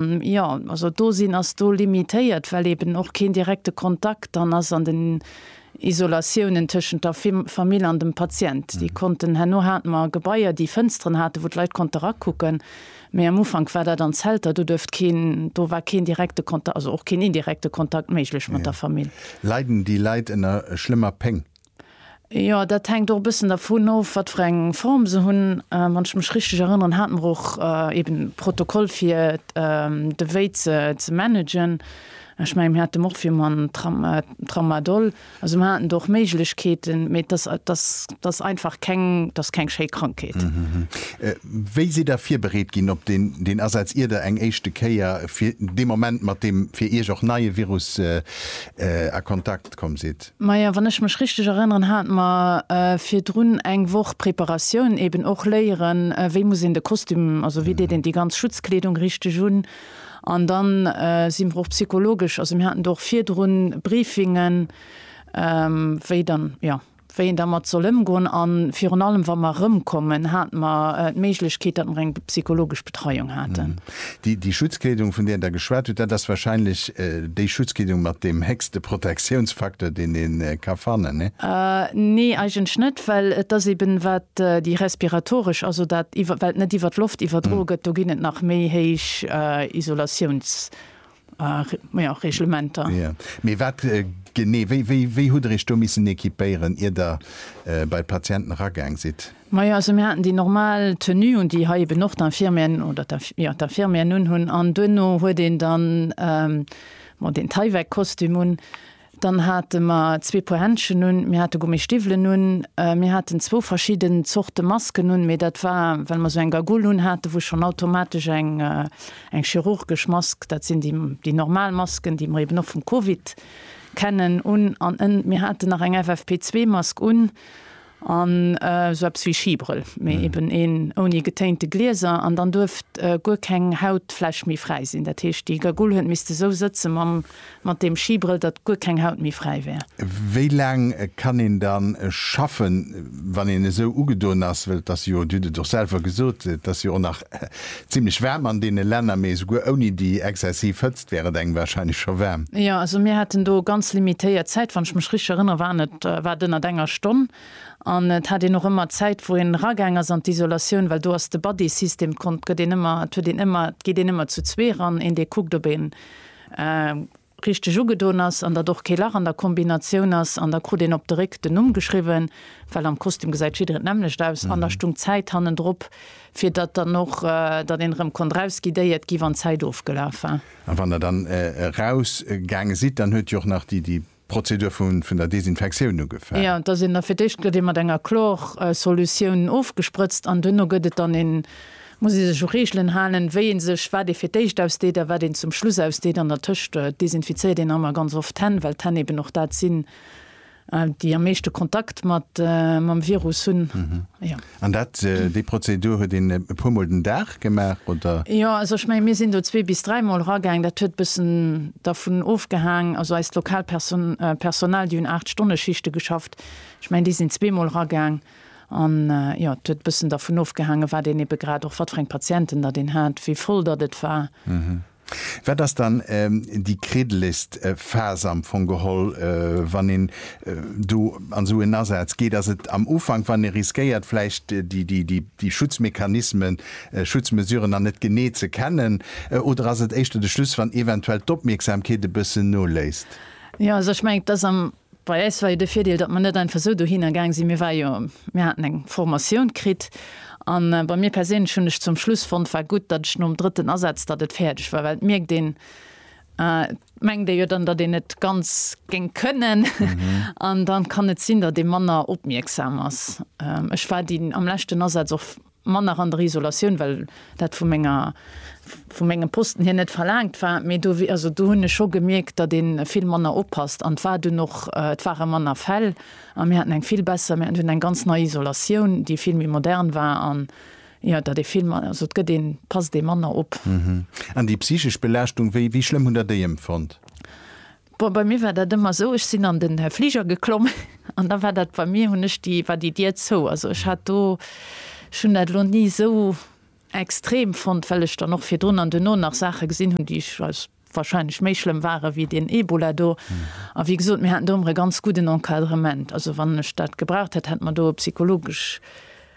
Jo, also d'Dosinn ass do limitéiert, well eeben och keen direkte Kontakt dann ass an den Isolatiounen tëschent der Famill an dem Patient. Déi konnten, herno hate mer Gebaier, déi Fënsteren haten, wou d'Leit konnte rakucken, mee am Ufank war dat an Zelter, do duerft keen, do war keen direkte Kontakt, also och keen indirekte Kontakt méiglech mat der Famill. Leiden déi Leit ënner schlëmmer Péng? Jo, dat hänkt och e bëssen dervun of, wat fir eng Form se hunn. Wann ech mech richteg erënneren, hate mer och eeben e Protokoll fir de Wéi ze managen. Ech mengen, mir hate mer och virman den Tramadol. Also mer haten do och Méiglechkeeten, mee dat ass einfach keng, dat ass keng schéi Krankheet. Wéi sidd Der virbereet ginn op deen Asaz, ier Der eng éischte Kéier fir dee Moment mat deem fir Iech och neie Virus a Kontakt komm sidd. Maja, wann ech mech richteg erënneren, hate mer virdrun eng Woch Preparatioun, eben och léieren, wéi muss een de Kostüm, also wéi deet een déi ganz Schutzkleedung richteg un. An dann si mer och psychologesch, also mir haten do och virdrun Briefingen, wéi dann, jo. wéi een dermat soll ëmgoen a virun allem, wa mer erëmkommen, hate mer d'Méiglechkeet, datt mer eng psychologesch Betreiung haten. Déi Schutzkleedung, vun där Der geschwat hutt, dat ass wahrscheinlech déi Schutzkleedung mat deem héchste Protektiounsfaktor, deen een ka fannen, nee? Nee, eigentlech net, well et ass eeben, wat déi respiratoresch, also dat iwwer, wat net iwwer d'Loft iwwerdroe gëtt, do ginn et nach méi héich Isolatiouns. jo, Reglementer. Jo, mee wat genee, wéi, wéi, wéi hutt Der Iech do missen équipéieren, ier Der bei d'Patienten eragaang sidd? Majo, also mir haten déi normal Tenue un, déi hei eben och d'Infirmieren oder d'Inf, jo, d'Infirmieren unhunn. An duerno huet een dann, bon, deen Tyvek-Kostüm un. Dann hate mer zwee Puer Händschen un, mir hate Gummi Stiwwelen un, mir haten zwou verschidden Zorte Masken un, mee dat war well mer esou eng Gagoule un hate wou schonn automatesch eng eng chirurgesch Mask, dat sinn déi déi normal Masken, déi mer eben och vum Covid kennen, un an mir haten nach eng FFP2 Mask un An esou eppes wéi Schibrëll, mee eben een ouni getéinte Glieser. An dann duerft guer keng Hautfläch méi fräi sinn. Dat heescht, déi Gagoul huet misste esou sëtze mam, mat deem Schibrëll, datt guer keng Haut méi fräi wär. Wéi laang kann een dann schaffen, wann een esou ugedoen ass? Well et ass jo, Dir hutt et och selwer gesot, et ass jo och nach zimlech waarm an deene Länner, mee esouguer ouni déi exzessiv Hëtzt, wär et engem wahrscheinlech scho waarm. Jo, also mir haten do ganz limitéiert Zäit. Wann ech mech richteg erënnere waren et, war et ënnert enger Stonn. An et hat een och ëmmer Zäit wou een eragaang ass an d'Isolatioun, well do ass de Buddy System, konnt, gëtt een ëmmer, et huet een ëmmer, et geet een ëmmer zu zwee eran, een dee kuckt ob een richteg ugedoen ass an datt och kee Lach an der Kombinatioun ass. An da krut een op de Réck den Numm geschriwwen, well am Kostüm gesäit jiddereen d'nämmlecht aus. An da stung d'Zäit hannendrop, Fir datt dann och, datt een erëm konnt rausginn, déi et gi wann d'Zäit ofgelaf war. A wann Der dann erausgaange sidd, dann huet jo och nach déi Prozedur vun der Desinfektioun ugefaangen. Jo, et ass een da, fir d'éischt gëtt ee mat enger Chlor-Solutioun ofgesprëtzt an duerno gëtt et dann, een muss ee sech u Reegelen halen, wéi ee sech, wat ee fir d'éischt ausdeet a wat een zum Schluss ausdeet. An der Tëscht desinfizéiert een nach emmer ganz oft d'Hänn, well d'Hänn eeben och dat sinn, déi am meeschte Kontakt mat mam Virus hunn. Jo. An dat, déi Prozedur huet een e puer Mol den Dag gemaach, oder? Jo, also ech mengen, mir sinn do zwee bis dräi Mol eragaang. Dat huet e bëssen dervun ofgehaang, also eist lokaalt Perso Personal, déi hunn aacht Stonne Schichte geschafft. Ech mengen, déi sinn zwee Mol eragaang. An jo, et huet e bëssen dervun ofgehaangen, wat een ebe grad och, wat fir eng Patienten datt een hat, wéi voll datt et war. Wat ass dann déi kriddelegst Phas am Fong geholl, wann een do an esou en Asaz geet? Ass et am Ufank, wann ee riskéiert vläicht déi Schutzmechanismen, Schutzmesuren nach net genee ze kennen? Oder ass et éischter de Schluss, wann eventuell d'Opmierksamkeet e bëssen noléisst? Jo, also ech mengen, et ass am Bei äis war jo de Virdeel, datt mer net einfach esou dohinner gaang sinn. Mir ware jo, mir haten eng Formatioun kritt. A bei mir perséinlech hunn ech zum Schluss fonnt, war gutt, datt ech nom drëtten Asaz, datt et fäerdeg war, well et mierkt een, et mengt ee jo dann, datt een et ganz géing kënnen an dann kann et sinn, datt ee manner opmierksam ass. Ech war déi am leschten Asaz och. manner an der Isolatioun, well dat vu menger, vu mengem Posten hier net verlaangt war, mee do, also do hunn ech scho gemierkt, datt ee vill manner oppasst an et war dunn och, et ware manner Fäll a mir haten eng vill besser, mir haten dunn eng ganz nei Isolatioun, déi vill méi modern war an, jo, datt ee vill, also et gëtt een, et passt ee manner op. An déi psychesch Belaaschtung, wéi, wéi schlëmm hunn Der déi empfonnt? Bon, bei mir war dat ëmmer esou, ech sinn an den Fliger geklomm an da war dat bei mir, hunn ech déi, war déi Dier zou. Also ech hat do, ech hunn dat elo ni esou extrem fonnt, well ech dann och virdrun an duerno nach Saache gesinn hunn, déi ech als wahrscheinlech méi schlëmm ware wéi deen Ebola do. A wéi gesot, mir haten do ëmmer e ganz gudden Encadrement. Also wann ech dat gebraucht hätt, hätt mer do e psychologesch.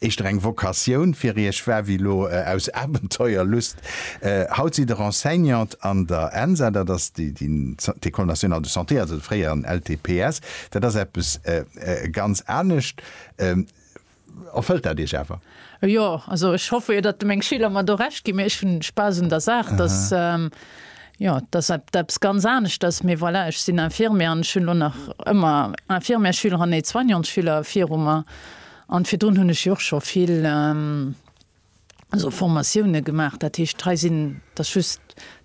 Éischter eng Vocatioun fir Iech war wéi lo aus Abenteuerlust. Haut sidd Der Enseignante an der ENSA, dat ass d'École nationale de santé, also de fréieren LTPS. Dat ass eppes ganz anescht. Erfëllt dat Iech awer? Jo, also ech hoffe jo, datt meng Schüler mer do Recht ginn. Mee ech hunn Spaass un der Saach. Et ass, jo, et ass eppes ganz aneschters. Mee voilà, ech sinn Infirmière an ech hunn lo nach ëmmer Infirmière-Schüleren, Aide-soignante-Schüler viru mer. An virdrun hunn ech jo och scho vill esou Formatiounen gemaach. Dat heescht, hei sinn, et ass just,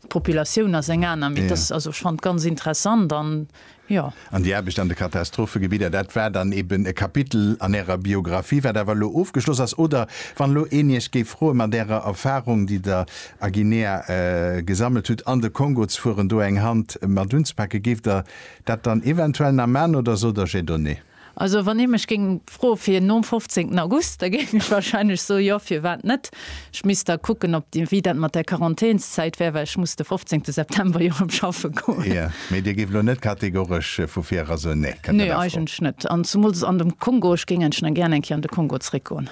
d'Populatioun ass eng aner, mee et ass, also ech fand ganz interessant an jo. An déi Aarbecht an de Katastrophegebidder, dat war dann eben e Kapitel an Ärer Biographie, wat awer elo ofgeschloss ass. Oder wann elo een Iech géif froen, mat Ärer Erfahrung, déi Der a Guinea gesammelt hutt, an de Kongo ze fueren, do eng Hand mat unzepake, géif Der dat dann eventuell nach maachen oder sot Der, J'ai donné? Also wann ee mech géing froe fir nom 15 August, da géif ech wahrscheinlech soe, jo, firwat net. Ech misst da kucken, ob, wéi dat mat der Quarantänszäit wär, well ech muss de 15 September jo erëm schaffe goen. Jo, mee Dir géift elo net kategoresch vu virera soen, nee, kënnt net a Fro? Nee, eigentlech net. An zumools an dem Kongo, ech géing enschen gären eng Kéier an de Kongo zréckgoen.